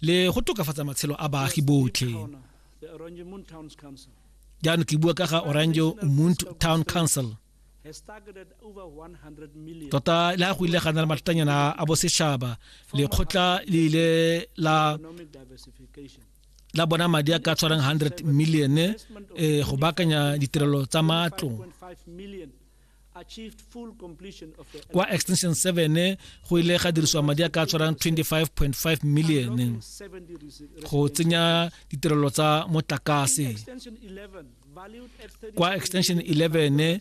le go tokafatsa matshelo a baagi botlhe jaanong ke bua ka ga orange mount town council tota le ga go ile ga na le mathatanyana a bosetšhaba lekgotla le ile la la bona madi a ka tshwarang 100 million eh, go baakanya ditirelo tsa matlo kwa extension 7 go ile ga dirisiwa madi a ka tshwarang 25.5 million go tsenya ditirelo tsa motlakase kwa extension 11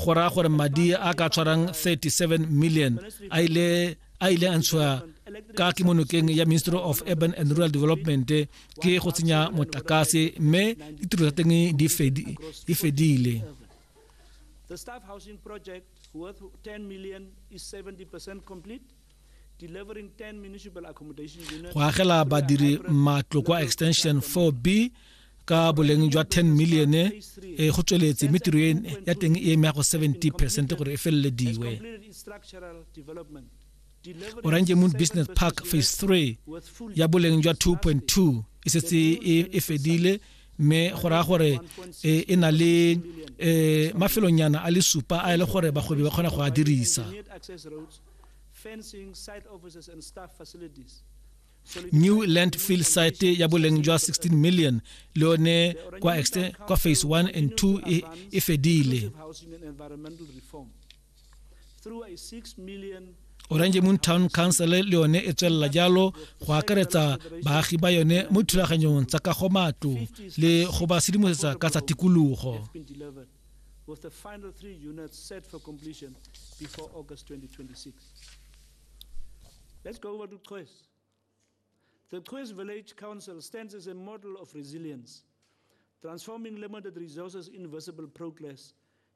go raya gore madi a ka tshwarang 37 million a ile a ile a ntshiwa ka kemonokeng ya ministry of urban and rural development ke go tsenya motlakase mme ditiro tsa teng di fedile The staff housing project, worth 10 million, is 70% complete. go agela badiri matlo kwa extension 4b ka boleng jwa 10 million e eh, go tsweletse mme tiro e, ya teng e eme ya go 70 percent gore e felelediwe orange moon business park phase 3 ya boleng jwa 2.2 e setse e, e fedile mme go raya gore e, e na le e, mafelonyana a le supa a e le gore bagwebi ba kgona go a dirisa new landfill site ya boleng jwa 16 million le yone kwa, kwa phase 1 and 2 e, e fedile orange moon town council le yone e tswelela jalo go akaretsa baagi ba yone mo dithulaganyong tsa ka go matlo le go ba sedimosetsa ka tsa tikologo with the final three units set for completion before August 2026. Let's go over to Choice. The Choice Village Council stands as a model of resilience, transforming limited resources in visible progress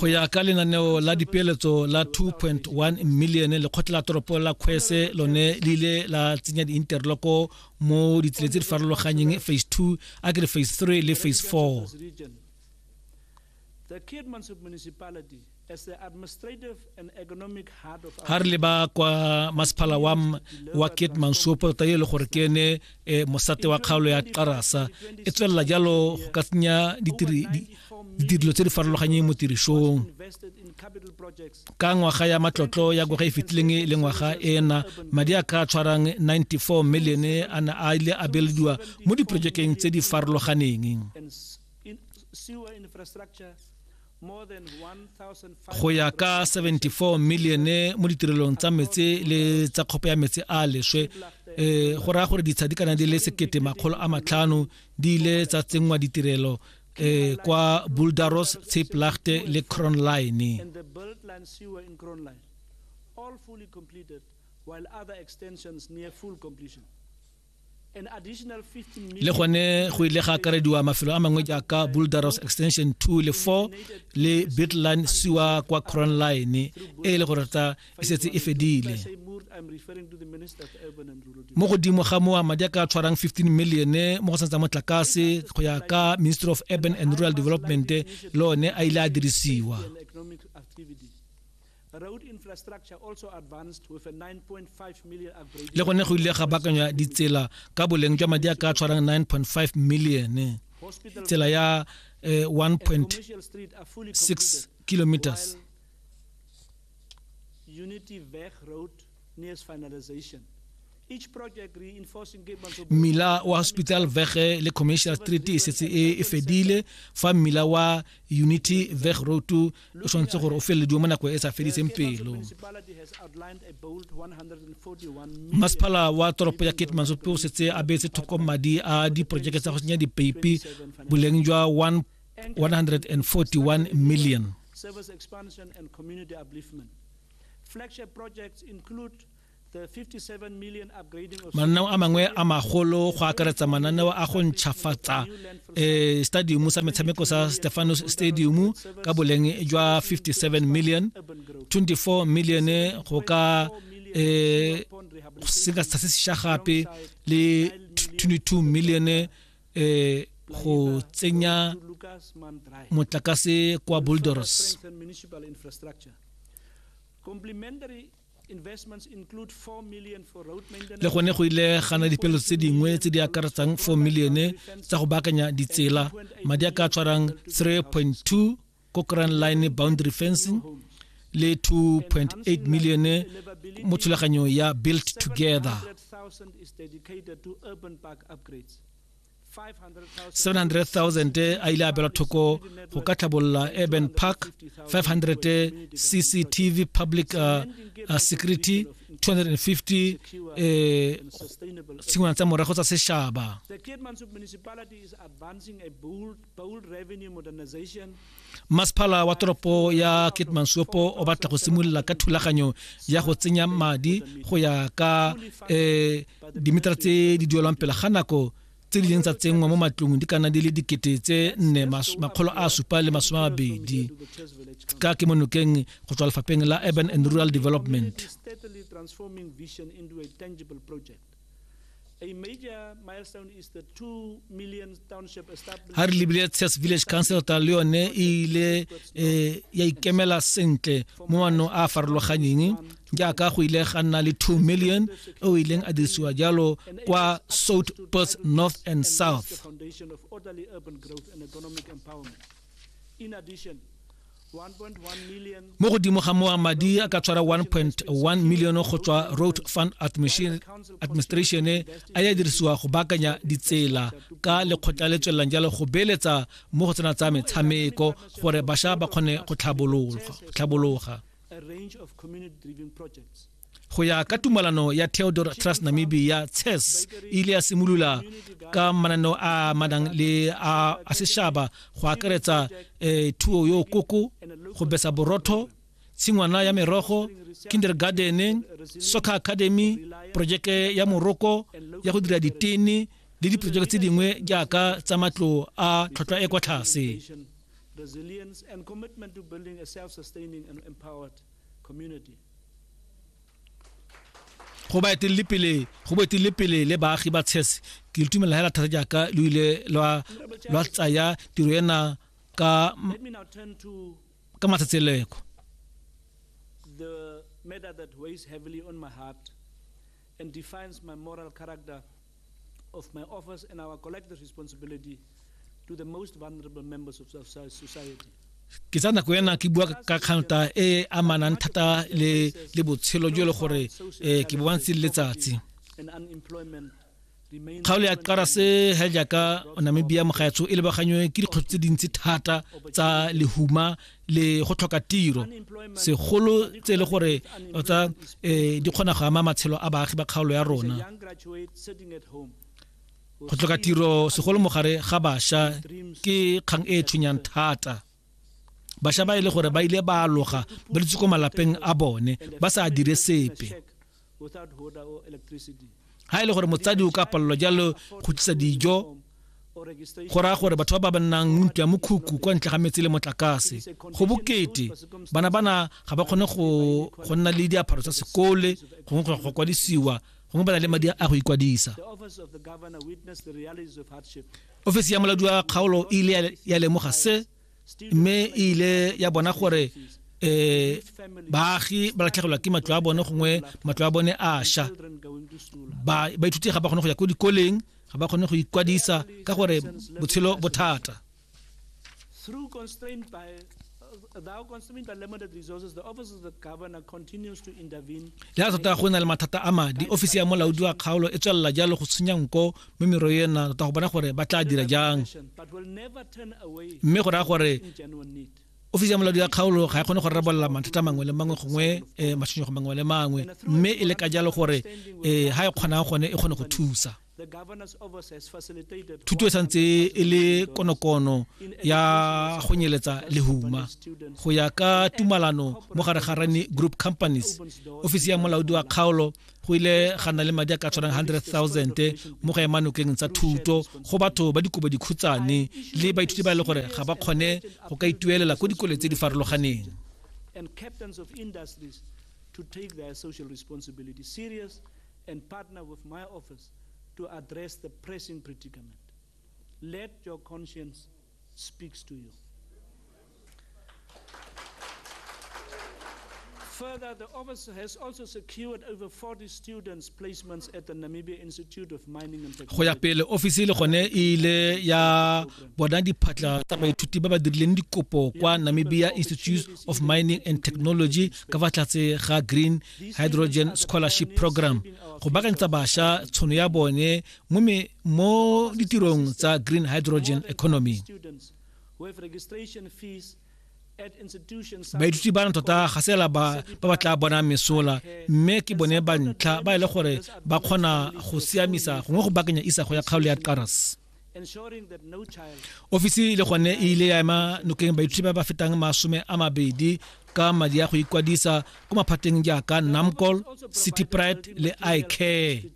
go ya ka lenaneo la dipeeletso la 2.1 million lekgotla la toropo la kgwese lone le ile la tsenya di-interloko mo ditsela tse di farologanyeng phase 2 a ke re phase 3 le phase 4 ga re leba kwa masephala wa wa keetmansopo tota e le gore ke ene um mosate wa kgaolo ya qarasa e tswelela jalo go ka tsenya ditirelo tse di farologanyeng mo tirisong ka ngwaga ya matlotlo ya ngwaga e fetileng e le ngwaga ena madi a ka tshwarang 94 million a ne a ile a belediwa mo diprojekeng tse di farologaneng go ya ka 74 milione mo ditirelong tsa metse le tsa kgopo ya metse a leswe um go raya gore ditsha di kana di le sekete makgolo a matlhano di ile tsa tsenngwa ditirelo um kwa buldaros tsheplachte le cronline while other extensions near full completion. le gone go ile ga akarediwa mafelo a mangwe jaaka buldaros extension 2 le 4 le bitline siwa kwa cron line e le gore ta e setse e fedile mo godimo ga moa madi a ka tshwarang 15 million mo go santsa motlakase go ya ka ministry of urban and rural development le one a ile a dirisiwa le gone go ile ga bakanywa ditsela ka boleng jwa madi a ka tshwarang 9.5 million tsela ya 1.6 eh, kilometers mmila wa hospital vege le commercial street e setse e, e fedile fa mmila wa unity veg road o tshwanetse gore o felelediwe mo nako e sa fediseng pelo masepala wa toropo ya kate mansope o setse a beetse thoko madi a diporojeke tsa go senya dipeipi boleng jwa 141 million service expansion and community upliftment Flagship projects include the 57 million upgrading of mananeo a mangwe a magolo go akaretsa mananeo a go ntšhafatsa um stadium sa metshameko sa stefanos stadium ka boleng jwa 57 million 24 million go ka um seka sa se sesha gape le 22 million eh go tsenya motlakase kwa Boulders le gone go ile gana dipelo tse dingwe tse di akaretsang 4 millione tsa go baakanya ditsela madi a ka tshwarang 3.2 ko grand line boundary fencing le 2.8 million mo thulaganyo ya built together 700,000 a ile a belwa thoko go ka tlhabolola urban park 500 cctv public uh, uh, security 250 eh, tshingwana tsa morago tsa sešaba Masepala wa toropo ya Keetmanshopo o batla go simolola ka thulaganyo ya go tsenya madi go ya ka eh, dimetara tse di duelwang pele ga nako tse di leng tsa tsenngwa mo matlong di kana di le dikete tse nne makgolo a supa le masome a mabedi ka ke monokeng go tswa lefapheng la urban and rural development ga re lebile tshas village council ta le yone e ile um ya ikemela sentle mo manong a a farologanyeng jaaka go ile ga nna le 2 million e o ileng a dirisiwa jalo kwa south perth north and south Mo godimo ga moa madi a ka tshwara 1.1 milione go tswa Road Fund Administration a ya dirisiwa go baakanya ditsela ka lekgotla le tswelelang jalo go beeletsa mo go tsena tsa metshameko gore basha ba kgone go tlhabologa. go ya ka tumalano ya theodore trust namibia ces e ile ya simolola ka mananeo a manang le a sešaba go akaretsa um thuo yo koko go besa borotho tshingwana ya merogo kindergarden soccer academy projeke ya moroko ya go dira ditene le diprojeke tse dingwe jaaka tsa matlo a tlhotlhwa e kwa tlase resilience and commitment to building a self-sustaining and empowered community. go ba etelele pele go ba etelele pele le baagi ba tshese ke le tumela hela thata jaaka lo ile lwa lwa tsaya tiro ena ka ka matsatseleko the matter that weighs heavily on my heart and defines my moral character of my office and our collective responsibility to the most vulnerable members of our society. ke tsa nako yana ke bua ka kganta e e amanang thata le le botshelo jo e le gore um ke bo bantse le letsatsi kgaolo ya qara se he jaaka namibia mogaetsho e lebaganywe ke dikgotso tse dintsi thata tsa lehuma le go tlhoka tiro segolo tse e le gore tsa um eh, di kgona go ama matshelo a baagi ba kgaolo ya rona go tlhoka tiro segolo mogare ga bašwa ke kgang e e tshwenyang thata bašwa ba e le gore ba ile ba aloga ba dutse ko malapeng a bone ba sa dire sepe ga e le gore motsadi o ka palelwa jalo go tlisa dijo go raya gore batho ba ba bannang ntlo ya mokhukhu kwa ntle ga metsi le motlakase go bokete bana bana ga ba kgone go nna le diaparo tsa sekole gongwe go go kwadisiwa gongwe ba na le madi a go ikwadisa ofisi ya moladi wa kgaolo e ile ya lemoga se mme e ile ya bona gore eh baagi ba latlhegelwa ke matlo a bone gongwe matlo a bone a sha ba ba ithuti ga ba kgone go ya ko dikoleng ga ba kgone go ikwadisa ka gore botshelo bothata through constrained by ya tota go na le mathata a madi ofisi ya molaodi wa kgaolo e tswelela jalo go tshenya nko mme mero ena tota go bona gore ba tla dira jang mme go raya gore ofisi ya moladi ya kgaolo ga e kgone go rarabolola mathata mangwe le mangwe gongwe um eh, matshwenyego mangwe le mangwe mme e le ka jalo gore um eh, ga e kgonang gone e kgone go thusa thuto e santse e le konokono ya go nyeletsa lehuma go ya ka tumalano mo gare ga rane group companies ofisi ya molaodi wa kgaolo go ile ga nna le madi a ka tshwanang 100,000 mo go ema nokeng tsa thuto go batho ba dikobo dikhutshwane le baithuti ba e le gore ga ba kgone go ka ituelela ko dikole tse di farologaneng and captains of industries to take their social responsibility serious and partner with my office to address the pressing predicament. Let your conscience speaks to you. Further, the office has also secured over 40 students placements at the Namibia Institute of Mining and Technology. Go ya pele ofisi le gone e ile ya bona diphatla tsa baithuti ba ba dirileng dikopo kwa Namibia Institute of Mining and Technology ka fa tlatse ga Green Hydrogen Scholarship Program go bakantsa basha tshono ya bone mo me mo ditirong tsa green hydrogen economy baithuti ba na tota ga sela ba ba ba tla bona mesola mme ke bone ba ntlha ba e le gore ba kgona go siamisa gongwe go bakanya isago ya kgaolo ya karas ofisi le gone e ile ya ema nokeng baithuti ba ba fetang masome a mabedi ka madi a go ikwadisa ko maphateng jaaka namcol city pride le icare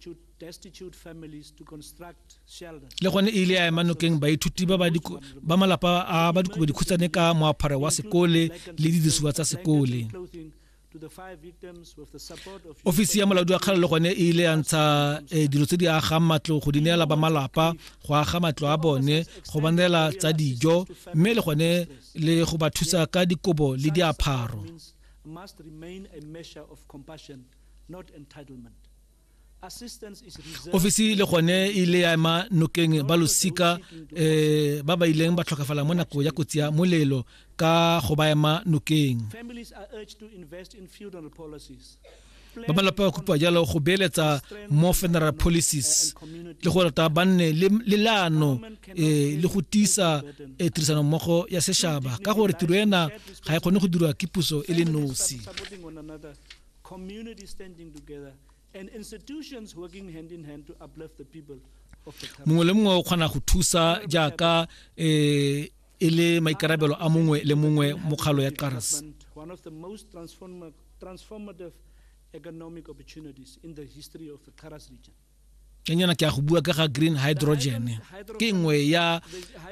le gone e ile ya ema nokeng baithuti ba ba malapa a ba dikobo dikhutshwane ka moapharo wa sekole le didirisiwa tsa sekole ofisi ya molaodi wa kgala le gone e ile ya ntsha eh, dilo tse di agang matlo go di neela ba malapa go aga matlo a bone go banela tsa dijo mme le gone le go ba thusa ka dikobo le diapharo must remain a measure of compassion, not entitlement. ofisi le gone e ile ya ema nokeng ba losika um ba ba ileng ba tlhokafala mo nako ya kotsi ya molelo ka go ba ema nokeng ba malapa ba kopiwa jalo go beeletsa mo funeral policies le go rata ba nne le leano um le go tiisa eh, tirisano mmogo ya setšhaba ka gore tiro ena ga e kgone go dirwa ke puso e le nosi mongwe le mongwe o kgona go thusa jaaka um e le maikarabelo a mongwe le mongwe mokgalo ya qaras kenyana ke a go bua ka ga green hydrogen ke nngwe ya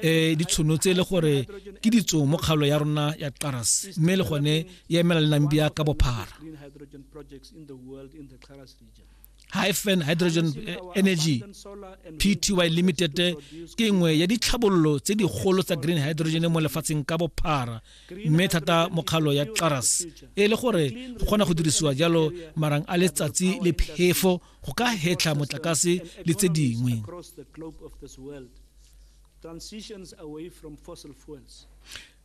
um ditshono tse e le gore ke ditso mo kgaolo ya rona ya qaras mme le gone ya emela le nambia ka bophara hyphen hydrogen eh, energy pty limited ke nngwe ya ditlhabololo tse digolo tsa green hydrogen mo lefatsheng ka bophara mme thata mokgalo ya qaras e le gore go kgona go dirisiwa jalo marang a letsatsi le phefo go ka hetlha motlakase le tse dingwe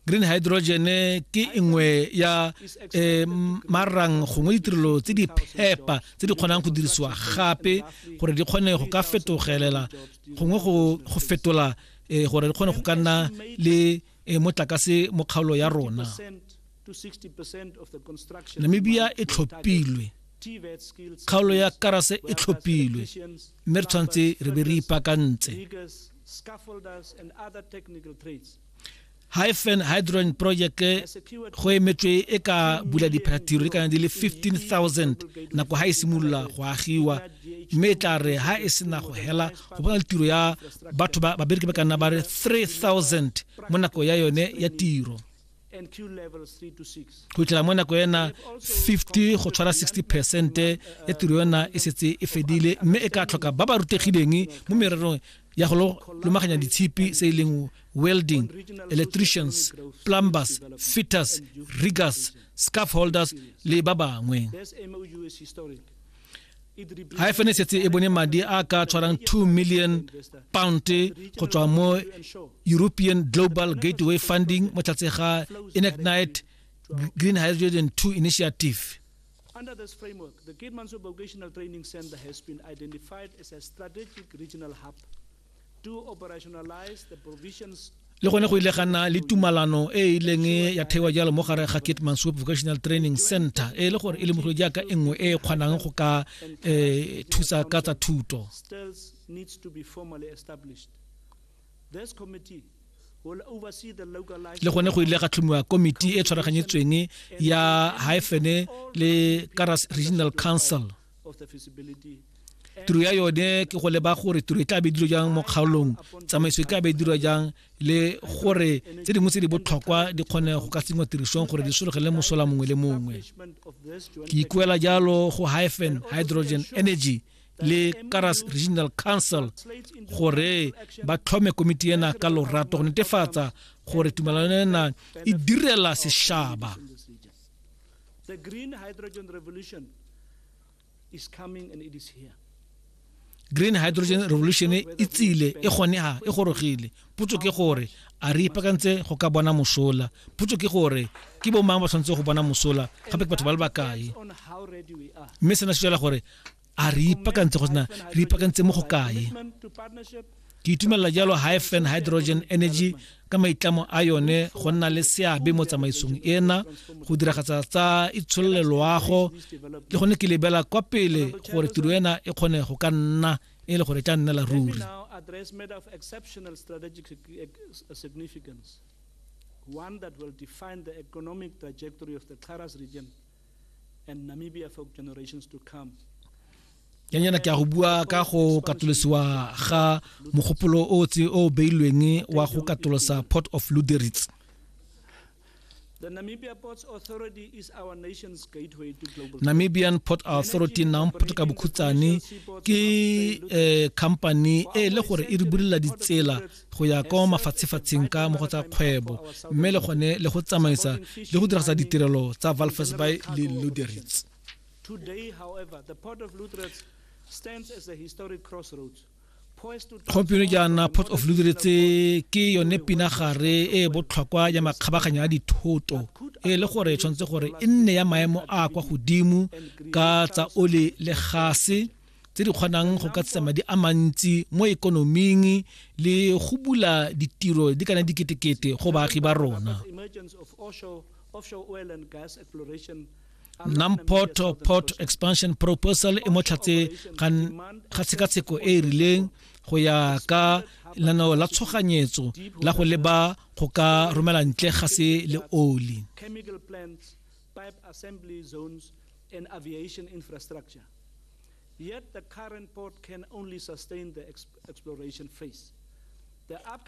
green hydrogen ke nngwe ya eh, marang gongwe ditirelo tse di phepa tse di kgonang go dirisiwa gape gore di kgone go ka fetogelela gongwe go fetola eh, gore di kgone go ka nna le eh, motlakase mo kgaolo ya rona namibia e tlhophilwe kgaolo ya karase e tlhophilwe mme re tshwanetse re be re ipaakantse hyphen hydrogen project go emetswe e ka bula diphatiro le kana di le 15000 nako ha e simolola go agiwa mme e tla re ha e sena go hela go bona tiro ya batho ba babereki ba kana ba re 3000 mo nako ya yone ya tiro go tlela mo nako ena 50 go tshwara 60 percent ya tiro yona e setse e fedile mme e ka tlhoka ba ba rutegileng mo mererong ya go lomaganya ditshipi se e leng welding electricians plumbers fitters riggers scarf holders le ba bangwe ga e fene setse e bone madi a ka tshwarang 2 million pound go tswa mo european global gateway funding mo tlatse ga enactnight green hydrogen 2 initiative Under this framework, the Kate Mansour Vocational Training Center has been identified as a strategic regional hub le gone go ile ga nna le tumalano e e ileng ya theiwa jalo mo gare ga kitman soup vocational training center e le gore e le mogolo jaaka e nngwe e e kgonang go ka um thusa ka tsa thuto le gone go ile ga tlhomiwa komiti e tshwaraganyetsweng ya hyphene le karas regional council tiro ya yone ke go leba gore tiro e tla be dilo jang mo kgaolong tsamaiso e tla be dirwa jang le gore tse dingwe tse di botlhokwa di kgone go ka tsenngwa tirisong gore di sologele mosola mongwe le mongwe ke ikuela jalo go hyphen hydrogen energy le karas regional council gore ba tlhome komiti ena ka lorato go netefatsa gore tumelano ena e direla sešaba The green hydrogen revolution is coming and it is here. green hydrogen revolution e tsile e gone ha e gorogile putso ke gore a re ipakantse go ka bona mosola putso ke gore ke bo mang ba tshwanetse go bona mosola gape ke batho ba le bakae mme sena se tswela gore a re ipaakantse go tsena re ipaakantse mo go kae ke itumelela jalo hyphen hydrogen energy ka maitlamo a yone go nna le seabe mo tsamaisong ena go diragatsa tsa itsholole loago le gone ke lebela kwa pele gore tiro ena e kgone go ka nna e le gore e tla nnela ruri one that will define the economic trajectory of the Karas region and Namibia for generations to come. ya nyana ke a go bua ka go katolosiwa ga mogopolo o tse o beilweng wa go katolosa port of luderitz The Namibia Ports Authority is our nation's gateway to global namibian port authority namport ka bokhutsane ke eh, company e le gore e re bulela ditsela go ya kwa mafatshefatsheng ka mo go tsa kgwebo mme le gone le go tsamaisa le go diragisa ditirelo tsa valfes by le luderitz gompieno jaana port of luderitz ke yone pinagare e e botlhokwa ya makgabaganya a dithoto e le gore e tshwanetse gore e nne ya maemo a kwa godimo ka tsa ole le gase tse di kgonang go ka tsisa madi a mantsi mo ekonoming le go bula ditiro di kana diketekete go baagi ba rona namport port expansion proposal e motlhatse ga tshekatsheko e e rileng go ya ka lenaneo la tshoganyetso la go leba go ka romela ntle ga se le oli pipe assembly zones, and aviation infrastructure. Yet the current port can only sustain the exploration phase.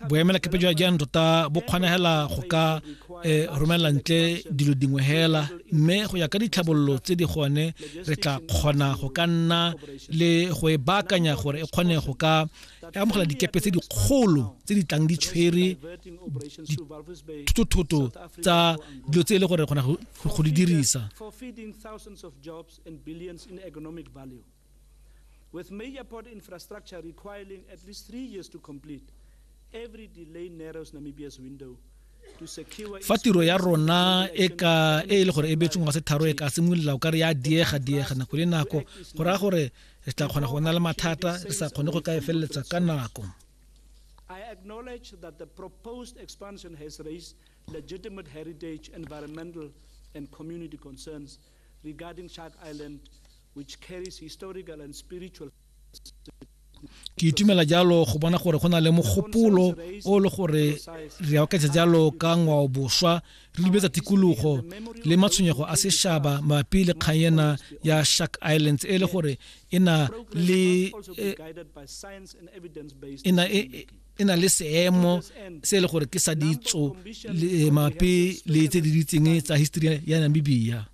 boemela kepe jwa jaanong tota bo kgonegela go ka eh, romelela ntle dilo dingwe hela mme go ya ka ditlhabololo tse di gone re tla kgona go ka nna le go e baakanya gore e kgone go ka e amogela dikepe tse dikgolo tse di tlang di tshwere dithoto tsa dilo tse e le gore kgona go di dirisa With major port infrastructure requiring at least three years to complete, every delay narrows Namibia's window fa tiro ya rona e ka e e le gore e beetseng wa setharo e ka simolola o ka re ya diega diega nako le nako go raya gore re tla kgona go na le mathata re sa kgone go ka e feleletsa ka nako I acknowledge that the proposed expansion has raised legitimate heritage, environmental, and community concerns regarding Shark Island, which carries historical and spiritual. ke itumela jalo go bona gore go na le mogopolo o le gore re akatsa jalo ka ngwao boswa re lebetsa tikologo le matshwenyego a sešaba mapi le kgang ena ya shark islands e le gore e na le e na le seemo se e le gore ke sa ditso eh, mape le tse di ditseng tsa history ya namibia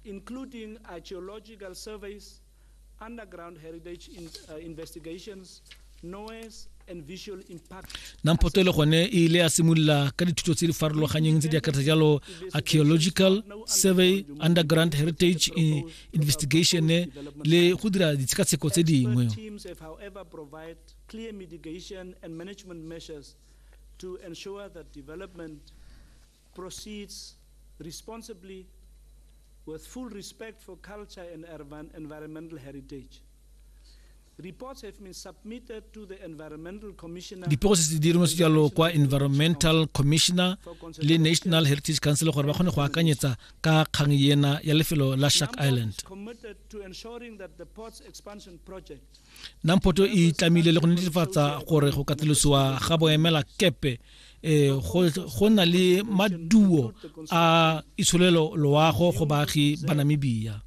Nampoto le gone e ile ya simolola ka dithuto tse di farologanyeng tse di akaretsa jalo archaeological survey underground heritage investigation le go dira ditshekatsheko tse dingwe to ensure that development proceeds responsibly with full respect for culture and environmental heritage. Reports have been submitted to the Environmental Commissioner. dipego se se dirimo se jalo kwa environmental commissioner le national heritage council gore ba kgone go akanyetsa ka kgang ena ya lefelo la shark Namcom is island committed to ensuring that the port's expansion project namphoto e tlamile le go netefatsa gore go katolosiwa ga boemela kepe um go na le maduo a itsholelo loago go baagi ba namibia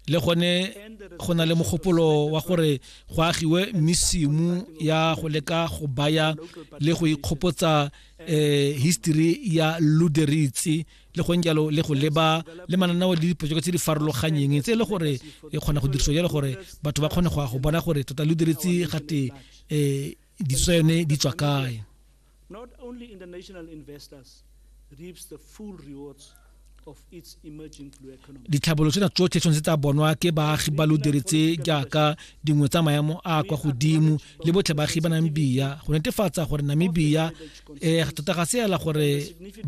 le gone go na le mogopolo wa gore go agiwe mesimu ya go leka go baya le go ikgopotsa um history ya luderitse le go jalo le go leba le mananeo le diprojeke tse di farologanyeng tse e le gore e kgona go dirisiwa jalo gore batho ba kgone go ya go bona gore tota lo diretse gate um ditso yone di tswa kae Not only international investors reaps the full rewards ditlhabolo tsena tsotlhe tshwanetse tsa bonwa ke baagi ba lo diretse jaaka dingwe tsa maemo a kwa godimo le botlhe baagi ba namibia go netefatsa gore namibia eh tota ga seela gore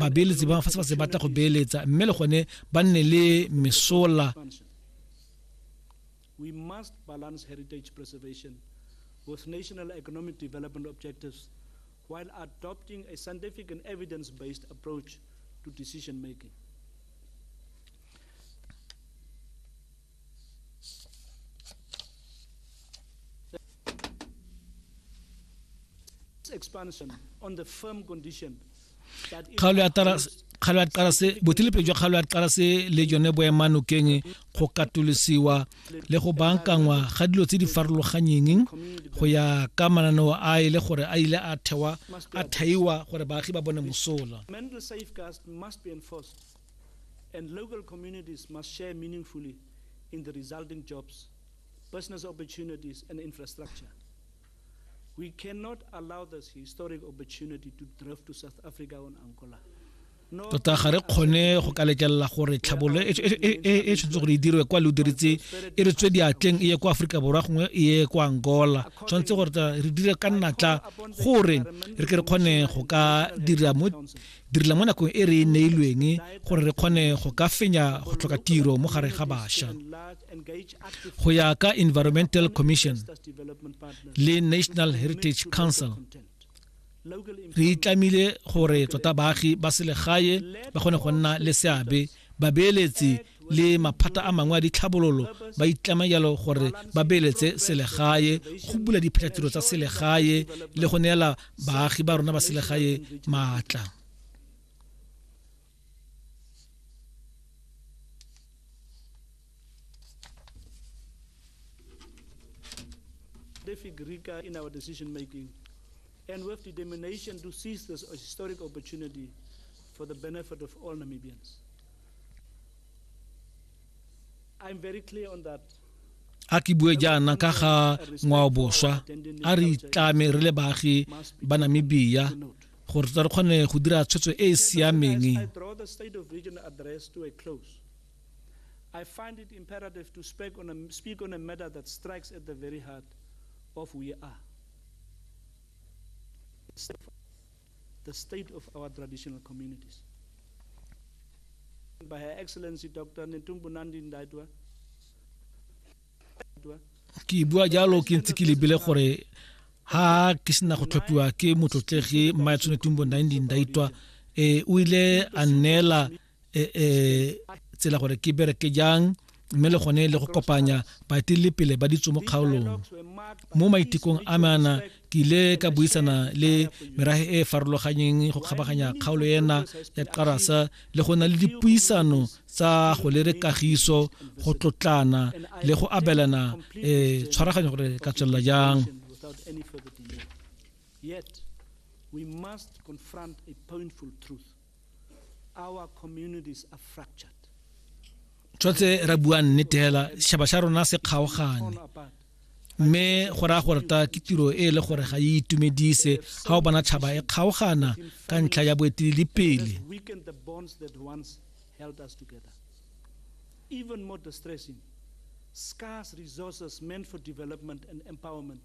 babeeletsi ba fa se ba se batla go beeletsa mme le gone ba nne le mesola we must balance heritage preservation with national economic development objectives while adopting a scientific and evidence-based approach to decision making kgaolo ya tarase kgalo ya tarase botilepele jwa kgalo ya tarase le jone boemanokeng go katolosiwa le go bankangwa ga dilo tse di farologanyeng go ya ka mananeo a e le gore a ile a thewa a thaiwa gore baagi ba bone mosola and local communities must share meaningfully in the resulting jobs, business opportunities, and infrastructure. We cannot allow this historic opportunity to drift to South Africa or Angola. tota ga re kgone go ka letlelela gore tlhabolo e tshwanetse gore e dirwe kwa lo diritse e re tswe diatleng e ye kwa aforika borwa gongwe e ye kwa angola tshwanetse gore re dire ka natla gore re ke re kgone go ka dira mo direla mo nakong e re e neilweng gore re kgone go ka fenya go tlhoka tiro mo gare ga bašwa go ya ka environmental commission le national heritage council re itlamile gore tota baagi ba selegae ba kgone go nna le seabe babeeletsi le maphata a mangwe a ditlhabololo ba itlama jalo gore ba beeletse selegae go bula diphatlatiro tsa selegae le go neela baagi ba rona ba selegae maatla David Rika in our decision making. and with determination to seize this historic opportunity for the benefit of all Namibians. a ke bue jaana ka ga ngwao boswa a re itlame re le baagi ba namibia gore re kgone go dira tshwetso e e siameng I find it imperative to speak on a, speak on a matter that strikes at the very heart of we are. the state of our traditional communities. By Her Excellency Dr. Netumbo Nandi Ndaitwa, ke bua jalo ke ntse ke lebile gore ha ke sena go tlhophiwa ke motlotlegi mmaetsone tumbo 19 daitwa e o ile a neela e, e, tsela gore ke bereke jang mme le gone le go kopanya baetelele pele ba ditso mo kgaolong mo maitekong a mana ke ile ka buisana le merage e e farologanyeng go kgabaganya kgaolo ena ya qarasa le go na le dipuisano tsa go lere kagiso go tlotlana le go abelana e tshwaraganyo gore ka tswelela jang we must confront a painful truth tshwanetse ra bua nnete fela shaba sha rona se kgaogane mme go raya gore ta ke tiro e e le gore ga e itumedise ga o bona tšhaba e kgaogana ka ntlha ya boeteledipele Even more distressing, scarce resources meant for development and empowerment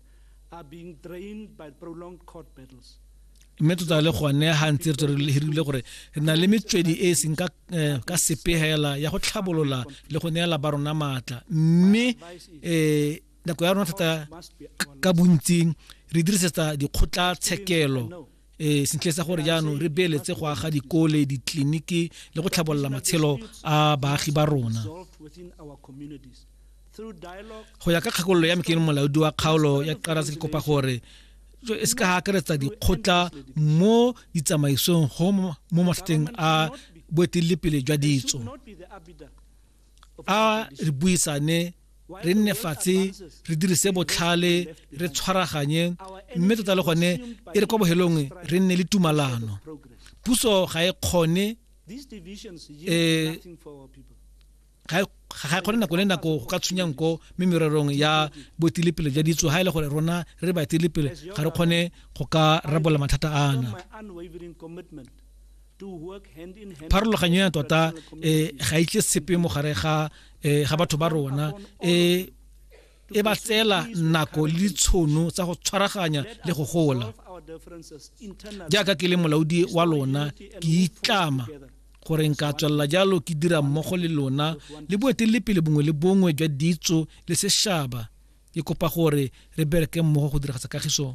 mme tota le gone ga ntse re tswere hirile gore re na le metswedi e e seng ka eh, ka sepegela ya go tlhabolola le go neela ba rona maatla mme um nako ya rona thata ka bontsing re dirisetsa dikgotlatshekelo e sentle sa gore jaanong re beeletse go aga dikole ditleliniki le go tlhabolola matshelo a baagi ba rona go ya ka kgakololo ya mekeng molaodi wa kgaolo ya karase ke kopa gore e se ka ga akaretsa dikgotla mo ditsamaisong go mo matlhateng a boeteledipele jwa ditso a re buisane re nne fatshe re dirise botlhale re tshwaraganye mme tota le gone e re kwa bohelong re nne le tumalano puso ga e kgone eh, ga e ga kgone nako le nako go ka tshwenya nko mme mererong ya boetelepele jwa ditso ga e le gore rona re baetelepele ga re kgone go ka rabola mathata ana pharologanyo ya tota um ga itle sepe mo gare ga um ga batho ba rona um e ba tseela nako le tshono tsa go tshwaraganya le go gola jaaka ke le molaodi wa lona ke itlama gore nka tswelela jalo ke dira mmogo le lona le boeteledipele bongwe le bongwe jwa ditso le sešaba ke kopa gore re bereke mmogo go diragatsa kagiso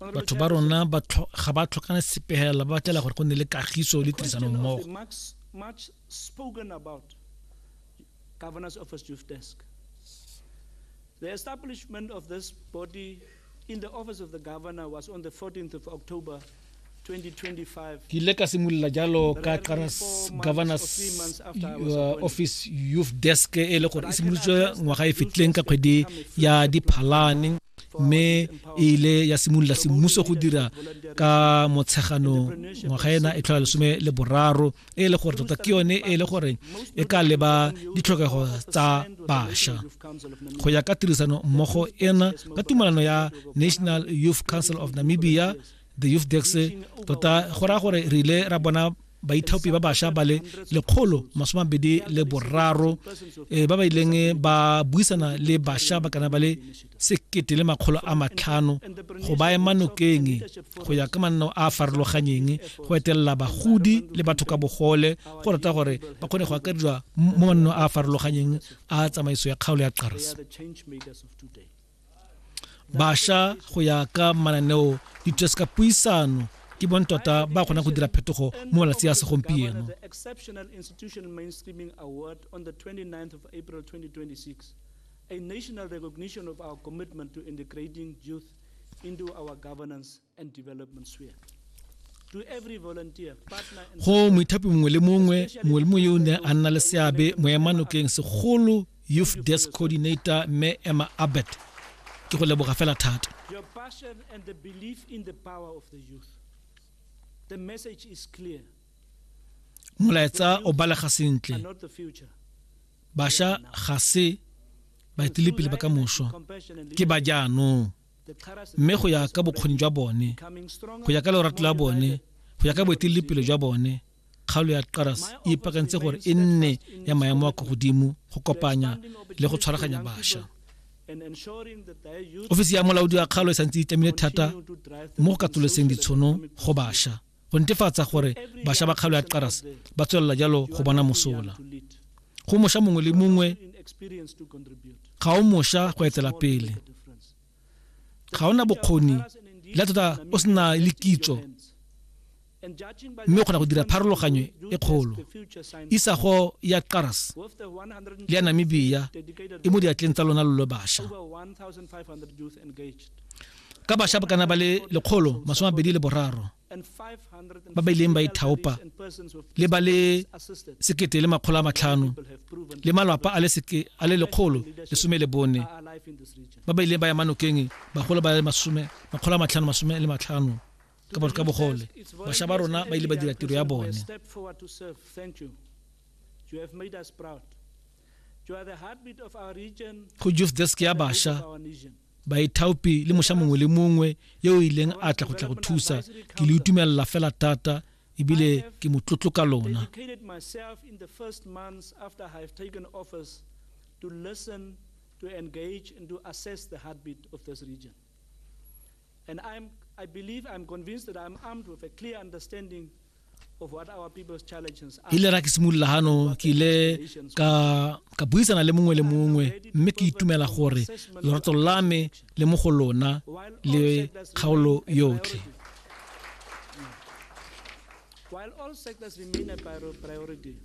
batho ba rona ga ba tlhokana sepegela ba batlela gore go nne le kagiso le tirisano mmogo Governor's Office Youth Desk. The establishment of this body in the office of the governor was on the 14th of October ke ile ka simolola jalo ka qaras governors uh, office youth desk e le gore e simolotswe ngwaga e fetileng ka kgwedi ya diphalane mme e ile ya simolola semmuso go dira ka motshegano ngwaga ena e tlhola lesome le boraro e le gore tota ke yone e le gore e ka leba ditlhokego tsa basha go ya ka tirisano mmogo ena ka tumalano ya national youth council of namibia the youth dex tota go raya gore re ile ra bona baithaopi ba bašwa ba le lekgolo masomabedi le boraro um ba ba ileng ba buisana le bašwa ba kana ba le sekete le makgolo a matlhano go ba ema nokeng go ya ka manno a a farologanyeng go etelela bagodi le batho ka bogole go rata gore ba kgone go akarediwa mo manno a a farologanyeng a tsamaiso ya kgaolo ya qars basha go ya ka mananeo dithutasi ka puisano ke bone tota ba kgona go dira phetogo mo malatsi a segompieno a national recognition of our commitment to integrating youth into our governance go moithapi mongwe le mongwe mongwe le mongwe yo o ne a nna le seabe moemanotleng segolo youth desk coordinator mme emma abbott ke go leboga fela thata molaetsa o balega sentle basha ga se baetelepele ba ka mošwa ke ba jaanong mme go ya ka bokgoni jwa bone go ya ka lorato la bone go ya ka boeteledipele jwa bone kgaolo ya qaras e ipakantse gore e nne ya maemo a kwa godimo go kopanya le go tshwaraganya bašwa ofisi ya molaodi wa kgaolo e santse e tlamile thata mo go katoloseng ditshono go bašwa go netefatsa gore basha ba kgalo ya qaras ba tswelela jalo go bona mosola go mosha mongwe le mongwe ga o mosha go etela pele ga ona bokgoni le tota o sena le kitso mme o kgona go dira pharologanyo e kgolo isago ya qaras le ya namibia e mo diatleng tsa lona lo lo basha ka basha bokana ba le lekgolo masome a bedi le boraro ba ba ileng ba ithaopa le ba le sekete le makgolo a matlhano le malwapa a le seke a le lekgolo lesome le bone ba ba ileng ba ya manokeng bagolo ba le masome makgolo a matlhano masome le matlhano ka bo ka bogole basha ba rona ba ile ba dira tiro ya bone go youth desk ya basha baithaopi le moša mongwe le mongwe yo o ileng a tla go tla go thusa ke le utumelela fela thata ebile ke motlotlo ka lona to listen, to engage, and to assess the heartbeat of this region. And I'm, I believe, I'm convinced that I'm armed with a clear understanding ile ra ke simolola gano ke ile ka ka buisana le mongwe le mongwe mme ke itumela gore lorato la me le mo go lona le kgaolo yotlhe While all sectors remain a priority,